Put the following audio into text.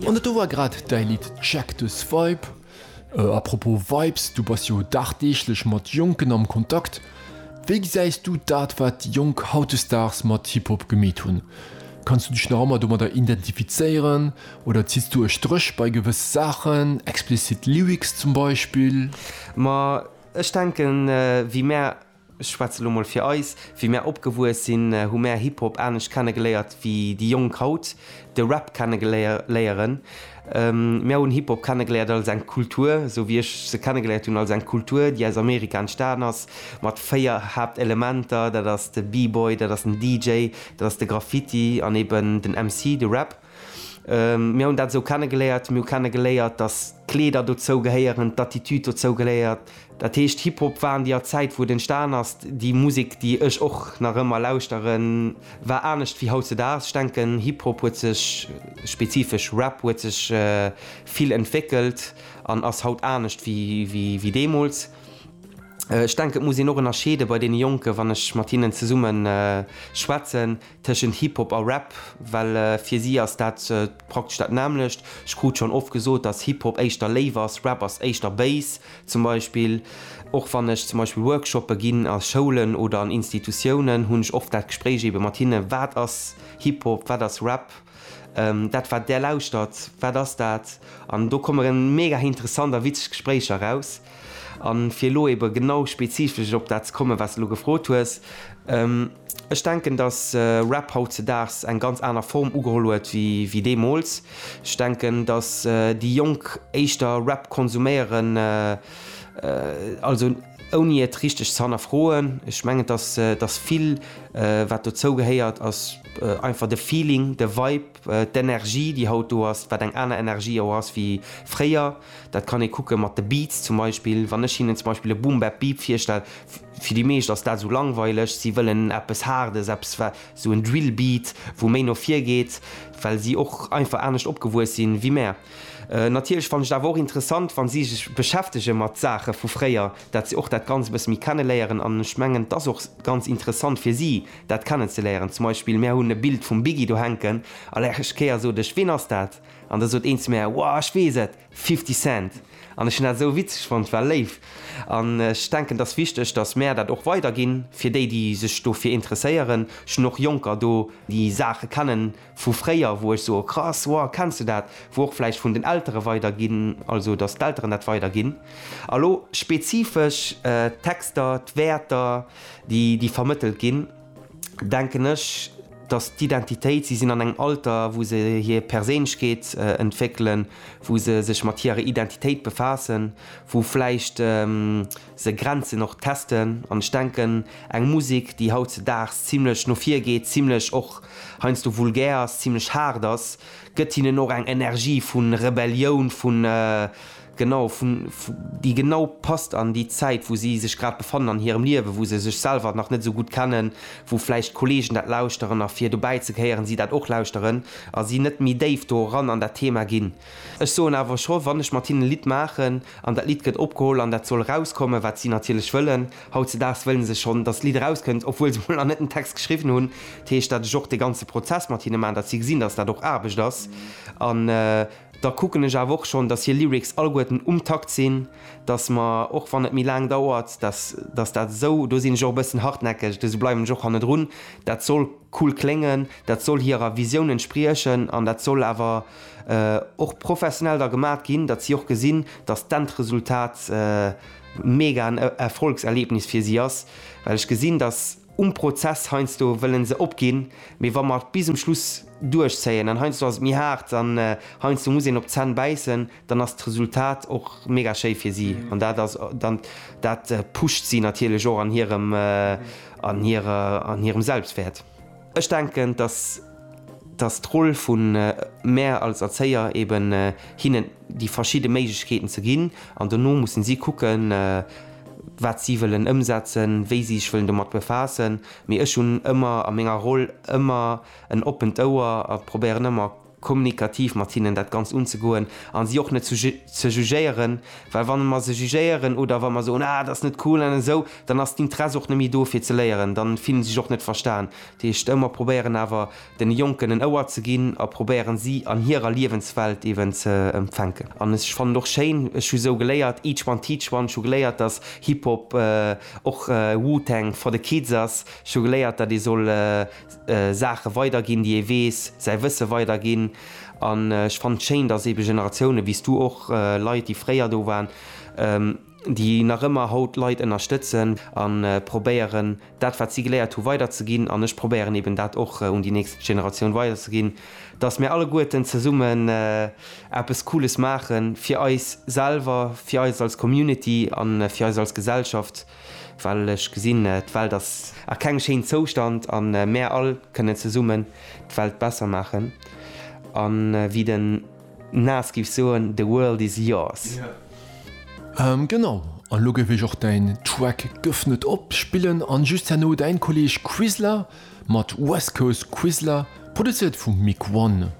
An dat do war grad däi Lidd Check This Vibe. A propos Vibes, du bass jo dagdeeglech mat Jonken am Kontakt. Wéi gesäis du dat wat déi Jonk hautdesdaags mat Hip Hop gemeet hunn? Kanns du dech nach ëmmer domadder identifizéieren oder zitts du e Stréch bei gewësse Saachen, explicit Lyrics zum Beispill? Ma ech denken, wéi mär ech schwätze lo mol fir eis, wéi mär opgewuess sinn, hu mär Hip-Hop anescht kenne geléiert wéi déi Jonk haut de Rap kenne léieren. Mär hunn Hip-Hop kenne geléiert als eng Kultur, esou wéi ech se kenne geléiert hunn, als eng Kultur, déi aus Amerika entstanen ass, mat véier Haaptelementer, dat ass de B-Boy, dat ass den DJ, dat ass de Graffiti an eben den MC, de Rap. Mir hunn dat esou kennegeléiert. Mir hu kennegeléiert, datt d'Kleeder dozou gehéieren, d'Attitude dozou gehéiert. Dat heescht, Hip-Hop war an deeër Zäit, wou et entstan ass, déi Musek, déi ech och nach ëmmer lauschteren, war anescht wéi hautzedaags. Ech denken, Hip-Hop huet sech, spezifesch Rap huet sech vill entwéckelt an ass haut anescht wéi deemools. Ech denken, et muss een och ënnerscheede bei deene Jonken, wann ech mat hinnen zesumme schwätzen, Tëschent Hip-Hop a Rap, well fir si ass dat praktesch dat nämmlecht. Ech krut schonn oft gesot, dass Hip-Hop éischter léif ass, Rap ass éischter béis. Zum Beispill, och wann ech zum Beispill Workshoppe ginn a Schoulen oder an Institutiounen, hunn ech oft dat Gespréich ebe mat hinne, Wat ass Hip-Hop, wat ass Rap? Dat, wat där lauschtert, wat ass dat? An do komme mega interessant a witzeg Gespréicher raus. A fir elo ebe genau spezifesch op dat ze kommen, wat s de elo gefrot hues, Ech denken, datt Rap hautzedaags eng ganz aner Form ugeholl huet wéi deemools. Ech denken, datt déi Jonk éischter Rap konsuméieren, also ouni et richteg ze hannerfroen. Ech mengen, datt vill wat dozou gehéiert ass einfach de Feeling, de Vibe. D'Energie, déi haut do ass, wat eng aner Energie och ass wéi fréier, dat kann ee kucke mat de Beats zum Beispill. Wann ech hinnen zum Beispill e Boom-Bap-Beep virstell, fir déi meescht ass dat esou langweileg. Si wëllen eppes Haardes, eppes wat esou en Drill-Beat, wou méi no vir geet, well si och einfach anescht opgewuess si wéi mär. Natierlech fannen ech et awer och interessant, wa si sech beschäftege mat Saache vu fréier, dat se och dat Ganzt e bësse méi kenneléieren. An ech mengen, et ass och ganz interessant fir si, dat kennen ze léieren. Zum Beispill mär hunn e Bild vum Biggie do hänken a lech Kéier sot ech, ween ass dat? An da sot een zu mär, Wow, ech weess et, Fifty Cent! An ech hunn dat esou witzeg fonnt, war léif. An ech denken, et ass wichteg, datt mär dat och weiderginn, fir déi, déi sech dofir interesséieren. Ech hunn och Jonker do, déi Saache kennen. Vu fréier, wou ech soe krass, wow, kenns de dat? Wou och vläicht vun den Eltere weider ginn, also datt d'Elteren dat weider ginn. A lo spezifesch d'Texter, d'Wäerter, déi vermëttelt ginn, denken ech, datt d'Identitéit, si sinn an engem Alter, wou se hir Perséinlechkeet entwéckelen, wou se sech mat hirer Identitéit befaassen, wou vläicht. Se grenzen och d'Testen an ech denken, eng Musek, déi hautzedaags zimlech no vir geet, zimlech och heiansdo vulgär ass, zimlech haart ass, gëtt hinnen och eng Energie vu Rebellioun, vu, genau, vu, déi genau passt an déi Zäit, wou si sech grad befannen an hirem Liewen, wou se sech selwer nach net esou gutt kennen, wou vläicht d'Kollegen dat lauschteren a fir dobäi ze gehéieren, si dat och lauschteren a si net méi déif do eran an dat Thema ginn. Ech soen awer scho, wann ech mat hinnen e Lidd maachen an dat Lidd gëtt opgeholl an dat soll erauskommen, wat si natierlech wëllen, hautzedaags wëlle se schonn, dass d'Lidd erauskënnt, obwuel se emol nach net den Text geschriwwen hunn, dat heescht, dat ech och de ganze Prozess mat hinne maachen, dass si gesinn, dass dat och Aarbecht ass an da kucken ech awer och schonn, dass hir Lyrics alleguerten um Takt sinn, dass mer, och wann et méi laang dauert, dass dass dat esou, do sinn ech och e bëssen hartnäckeg, esou bleiwen ech och hannedrun, dat soll cool kléngen, dat soll hirer Visioun entspriechen an dat soll awer. och professionell da gemat ginn, datt si och gesinn, datt d'Endresultat mega en Erfolgserlebnis fir si ass, well ech gesinn, datt um Prozess heiansdo wëlle se opginn, mee wa mer et bis um Schluss duerchzéien, an heiansdo ass et méi haart an heiansdo muss een op d'Zänn bäissen, dann ass d'Resultat och mega schéi fir si an dat ass dann, dat pusht si natierlech och an hirem, an hirer, an hirem Selbstwäert. Ech denken, dass dass d'Roll vu mär als Erzéier eben hinnen déi verschidde Méiglechkeeten ze ginn an dono mussen si kucken, wat si wëllen ëmsetzen, wéi si sech wëllen domat befaassen. Mee ech hunn ëmmer a menger Roll ëmmer en oppent Ouer a probéieren ëmmer, kommunikativ mat hinnen dat Ganzt unzegoen a si och net zu ze jugéieren, well wann mer se jugéieren oder wa mer soen, ah dat ass net cool an esou, dann ass d'Interesse och net méi do fir ze léieren, dann fillen se sech och net verstan. Dat heescht, ë mer probéieren awer den Jonken en Ouer ze ginn a probéieren si an hirer Liewenswelt eeben ze fänken. An ech fannen och schéin, ech hu sou geléiert, each one teach one, ech hu geléiert dass Hip-Hop och Wu-Tang for the kids ass, ech hu geléiert dat ee soll Saache weiderginn, déi ee weess, säi Wësse weiderginn. An ech fannen et schéin, datt eebe Generatiounen, wéi s du och, Leit, déi fréier do waren, déi nach ëmmer haut Leit ënnerstëtzen a probéieren, dat, wat si geléiert hu weiderzeginn, an ech probéieren eeben dat och un déi nächst Generatioun weiderzeginn, datt mir alleguerten zesummen eppes Cooles maache fir eis selwer, fir eis als Community a fir eis als Gesellschaft. Well ech gesinn, d'Welt ass a kengem schéinen Zoustand a mär all kënnen zesummen d'Welt besser maachen. A wéi den Nas géif soen, The world is yours. Genau, an elo géif ech och däin Track Gëff net op spillen an just herno däin Kolleg Quisla mat West Coast Quisla, produzéiert vum Mick One.